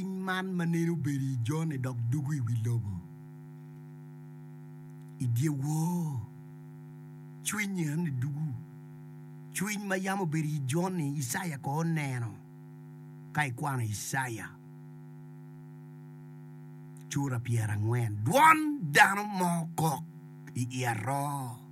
piny man ma nene obedo i jone dok dugo i wi lobo. I dyewor cwinyi en ni dugo cwiny ma yam obedo i jone Icaya ko oneno ka ikwano Icaya cura pyerangwen dwon dano mo kok i i aroo.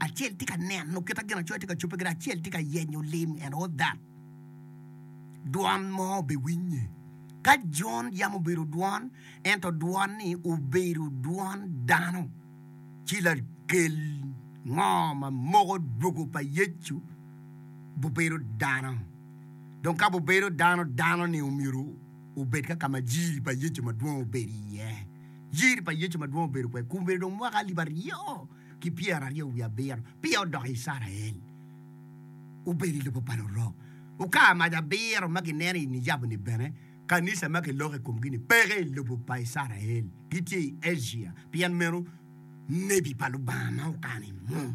Acel tye ka neno kit ma Ginacoya tye ka cobbe kwede, acel tye ka yenyo lim and all that. Dwon mo obiwinye. Ka Jon yam obedo dwon, ento dwon-ni obedo dwon dano, ci lakel ngo ma moko dwogo pa Yecu bubedo dano. Dong ka bubedo dano, dano-ni omyero obed ka ka ma jiri pa Yecu madwong obedo iye. Jiri pa Yecu madwong obedo kwede kun obedo dong mwaka alip aryo. ki pyeraryo wiye abiro peya odoko i Icrael, obedo i lobo pa Lurok. Okar mac abiro ma gineno i niyabu-ni bene, kanica ma kiloko i komgi-ni peke i lobo pa Icrael, gitye i Acia. Pien meno, nebi pa Lubanga ma okano i mung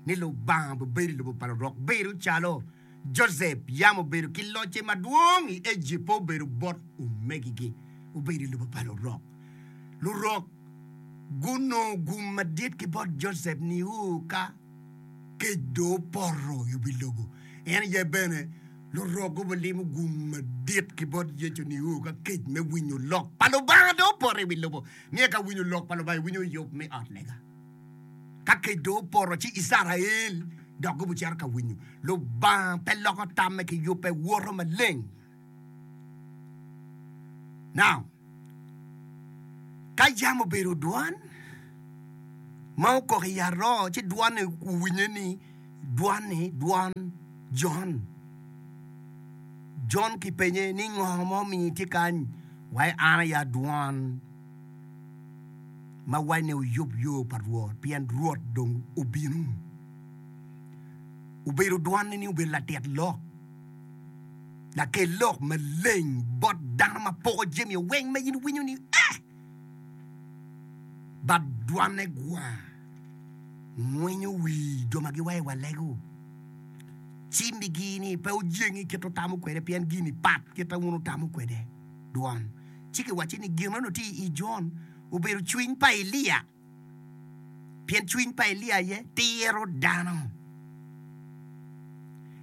ni Lubanga bibedo i lobo pa Lurok bedo calo, Josep yam obedo ki locce madwong i Ejipt pe obedo bot omegigi. Obedo i lobo pa lurok. Lurok gunongo gum madit ki bot Josep nio ka kec dong opoto yubo i lobo. En aye bene lurok gubulimo gum madit ki bot Yecu nio ka kec me winyo lok pa Lubanga dong opoto i wi lobo. Niye ka winyo lok pa Lubanga iwinyo yub me ot lega. Ka kec dong opoto, ci Icrael dok gubicito ka winyo. Lubanga pe loko tamme ki yubbe, woto maleng. Now, ka yam obedo dwan ma okok i aroo, ci dwan-ni owinye ni dwan-ni dwan Jon. Jon kipenye ni, Ngo ma omiyo itye kany? Wa, an aye adwan. ma wacine wuyub yo pa Rwot, pien Rwot dong obino. Obedo dwanne ni obedo latit lok, lakel lok maleng bot dano ma poko jami o weng ma in iwinyo ni ee. Bat dwanne gwa ngwinyo wi jo ma giwayo wa lego, ci migi ni pe ojengi kit wutamo kwede, pien gin-ni pat kit ma wun wutamo kwede. dwon, ci kiwacce ni, Gin meno tye i Jon, obedo cwiny pa Elia, pien cwiny pa Elia aye tiro dano.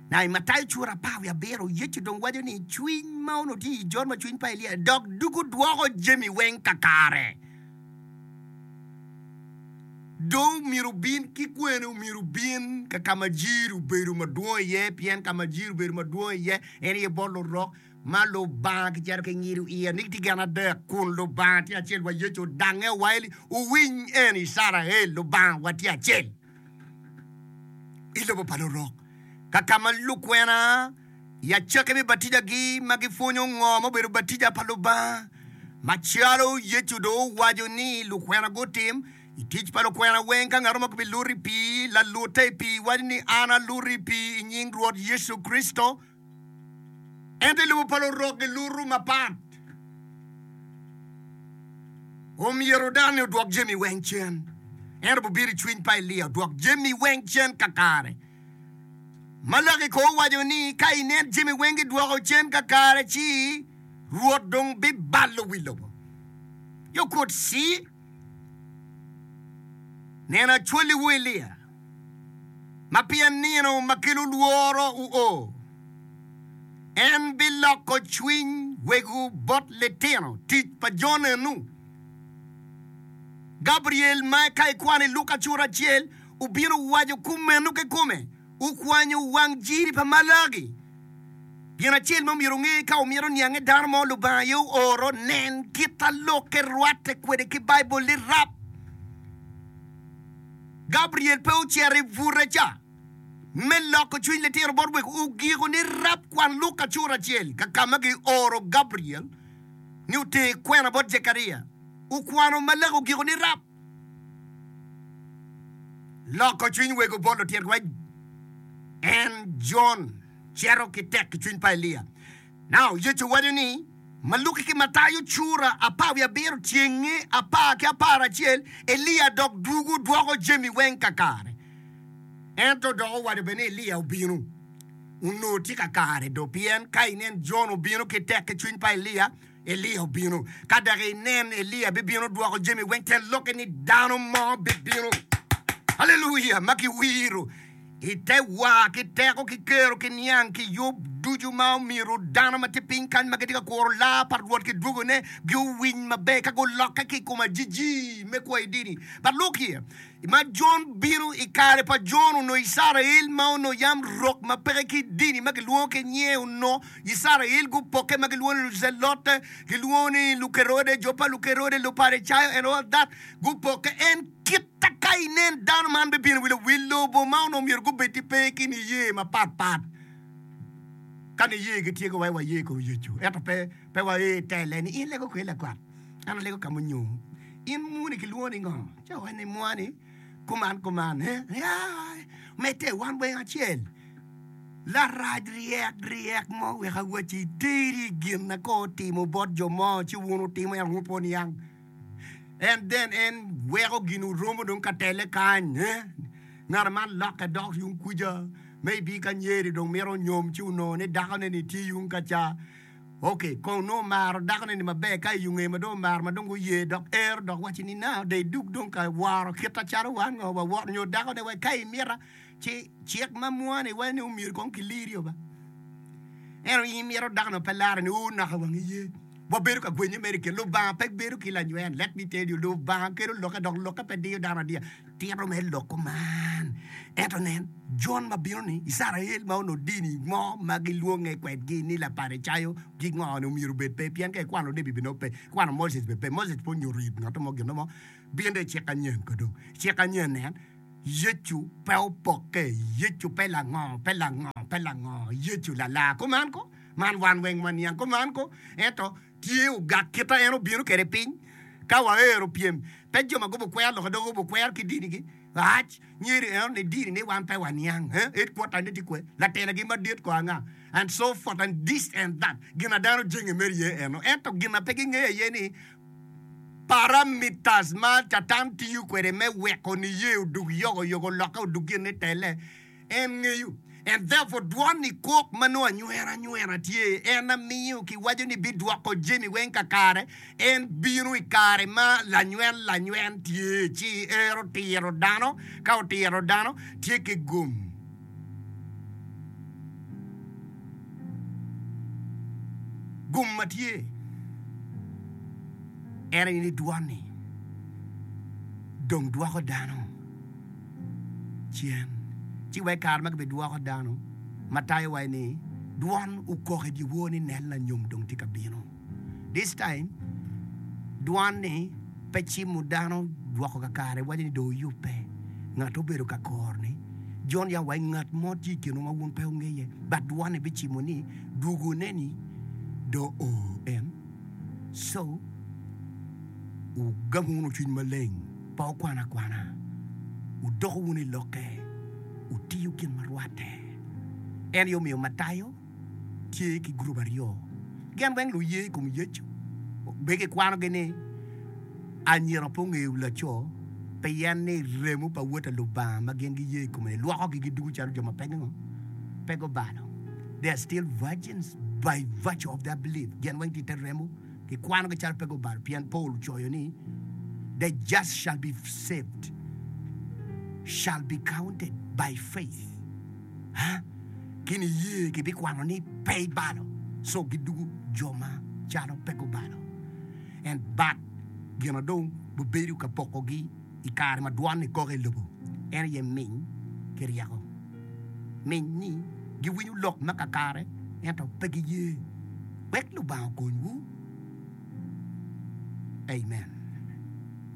Na i Matayo cura apar wiye abiro, Yecu dong waco ni cwiny ma onongo tye i Jon ma cwiny pa Elia dok dugo dwoko jami weng kakare. Dong omyero obin ki kwene? Omyero obin ka ka ma jiri obedo madwong iye, pien ka ma jiri obedo madwong iye en aye bot lurok. ma Lubanga kicito ki ngido iye ni gitye gin adek, kun Lubanga tye acel wa Yecu odange wa eli, wuwiny eni Icrael, Lubanga wa tye acel i lobo pa lurok. Ka ka ma lukwena yaceki me batija gi ma gipwonyo ngo ma obedo batija pa Lubanga, macalo Yecu dong owaco ni lukwena gutim, i tic pa lukwena weng ka ngato mo kibiluto i pii, lalute i pii waco ni an aluto i pii i nying Rwot Yecu Kricito, Ento i lobo pa Lurok giluto mapat. Omyero dano-ni odwok jami weng cen. Ento bibiro i cwiny pa Elia odwok jami weng cen kakare. Malaki kono owaco ni ka inen jami weng gidwoko cen kakare ci Rwot dong bibalo wi lobo. Yo kut C. Neno acwaliwu Elia, ma pi anino ma kelo lworo wuo, en biloko cwiny wegwu bot litino. Tic pa Jonenu. Gabriel ma ka ikwano i Luka cura acel obino waco kumeno kikome. Okwanyo wang jiri pa Malaki. Gin acel ma omyero wunge, Ka wumito niange dano mo Lubanga aye ooro, nen kit a lokke rwatte kwede ki Baibul ni rap. Gabriel pe ocito i bute ca me loko cwiny litino bot wek ogiko ni rap. Kwan Luka cura acel ka ka ma gioro Gabriel ni oter kwena bot Jekaria. Okwano Malaki ogiko ni rap. Loko cwiny wego bot lutirwa en Jon cito ki tek i cwiny pa Elia. Now, Yecu waco ni, Ma Luki ki Matayo cura apar wiye abiro cenge apar ki apar acel, Elia dok dwogo dwoko jami weng kakare. Ento dok owaco bene ni Elia obino. Onongo tye kakare do, pien ka inen Jon obino ki tek ki cwiny pa Elia, Elia obino. Ka dok inen, Elia bibino dwoko jami weng te lokke ni dano mo bibino. Haleluya! Ma kiwiro i te wa ki teko ki kero ki niang ki yub ducu ma omyero dano ma tye piny kany ma gitye ka kuro laa pa Rwot ki dwogone giowiny maber ka gulokke ki i kom ajiji me kwo i dini pa lok-ki. ma Jon bino i kare pa Jon onongo Icrael ma onongo yam rok ma peke ki dini ma kilwongo ki nyer onongo Icrael gupokke ma gilwongo ni Lucelote, gilwongo ni Lukerode, jo pa Lukerode, Luparicayo and all that gupokke. En kita ka inen dano man bibino wi lo, wi lobo ma onongo myero gubed ki pe ki niye mapat pat ka niye gitye ki waye waye kong Yecu ento pe pe waye tele ni in lego kwer lakwat an alego ka munyo in muni kilwongo ni ngo. Ca wani mwani kuman kuman he ya mete wan weng acel larac ryek ryek mo wek awaci teri gin na ko otimo bot jo mo ci wun utimo en wun pwon yang en den en weko gin uromo dong ka tele kany he ngana man lokke dok yung kuja maybe ka nyeri dong mito nyom ci uno ni dako ne ni tye yung ka ca Ok, kong onongo maro dakone ni maber, ka i ongee ma dong omaro ma dong guye dok ero dok wacci ni nao de idug dong ka woro kita calo wan ngo wawot nyo dakone wek ka imita ci cik ma mwa ni wai ni omyero kong kiliri oba ento in imito dakone ope lare ni oo naka wangi ye wabedo ka gwenye mere ki Lubanga pe bedo ki lanywel let me tell you Lubanga kelo lokke dok lokke pe diyo dano adiya. Tito me lok kuman. Ento nen, Jon ma bino-ni, Icrael ma onongo dini mo ma gilwonge kwedgi ni Laparicayo, gingo-ni omyero obed pe? Pien ka ikwano Lebi bene pe, ikwano Moses bene pe. Moses pe onyuto it ngat mo gin mo. Bino dong i cik anyen ka dong. I cik anyen nen, Yecu pe opokke, Yecu pe lango, pe lango, pe lango, Yecu lalar kuman ko. Man wan weng waniang kuman ko. Ento tye ogak kit ma en obino kwede piny. Ka waero pyem, pe jo ma gubo kwer loka dok gubo kwer ki dinigi. Rac, myero ineno ni dini ni wan pe waniang. Headquarter ne tye kwe? Latela gi madit ko anga? And so forth and this and that. Gin ma dano jenge mere ye eno. Ento gin ma pe gingeyo aye ni parameters ma Catan tiyo kwede me weko niye odug yogo yogo lokke odug gin ni telle. En ngeyo. En therefore dwon ni kok ma nongo anywero anywera tye, en amiyo kiwaco ni bidwoko jami weng kakare, en bino i kare ma lanywel lanywel tye ci ero tiro dano, ka otiro dano tye ki gum. Gum ma tye en aye ni dwon ni dong dwoko dano. cen, ci wek kare ma gibidwoko dano ma tayowa-ni ni, 'Dwon okok i dyewor ni, Nen, lanyom dong tye ka bino. This time, dwon-ni pe cimo dano woko kakare, waco ni, 'Dong wuyubbe. Ngat ma obedo ka kor ni, Jon ya wa, ngat mo tye i kinwa ma wun pe wungeye. But dwon-ni bicimo ni, 'Dwogone ni dong oo en. So, wugamu wunu cwiny maleng. pa okwanakwana, wudoko wunu i lokke, wutiyo gin ma rwatte. En aye omiyo Matayo tye ki gurup aryo, gin weng luye i kom Yecu, be kikwanogi ni anyira pe ongeyo laco, pien ni remo pa Wod pa Lubanga ma gin giye i kome-ni lwokogi gidugo calo jo ma pe gingo? pe gubalo, they are still virgins by virtue of their belief, gin weng tye i te remo. gikwanogi calo pe gubalo, pien Paul ocoyo ni, The just shall be saved, shall be counted by faith. Ha, ki niye kibikwano ni pe ibalo, so gidugu jo ma calo pe gubalo, and but gino dong bibedo ka pokogi. I kare ma dwon ekoke i lobo, en aye miny ki ryeko. Miny ni giwinyo lok ma kakare ento pe giye. Wek Lubanga okonywu. Amen.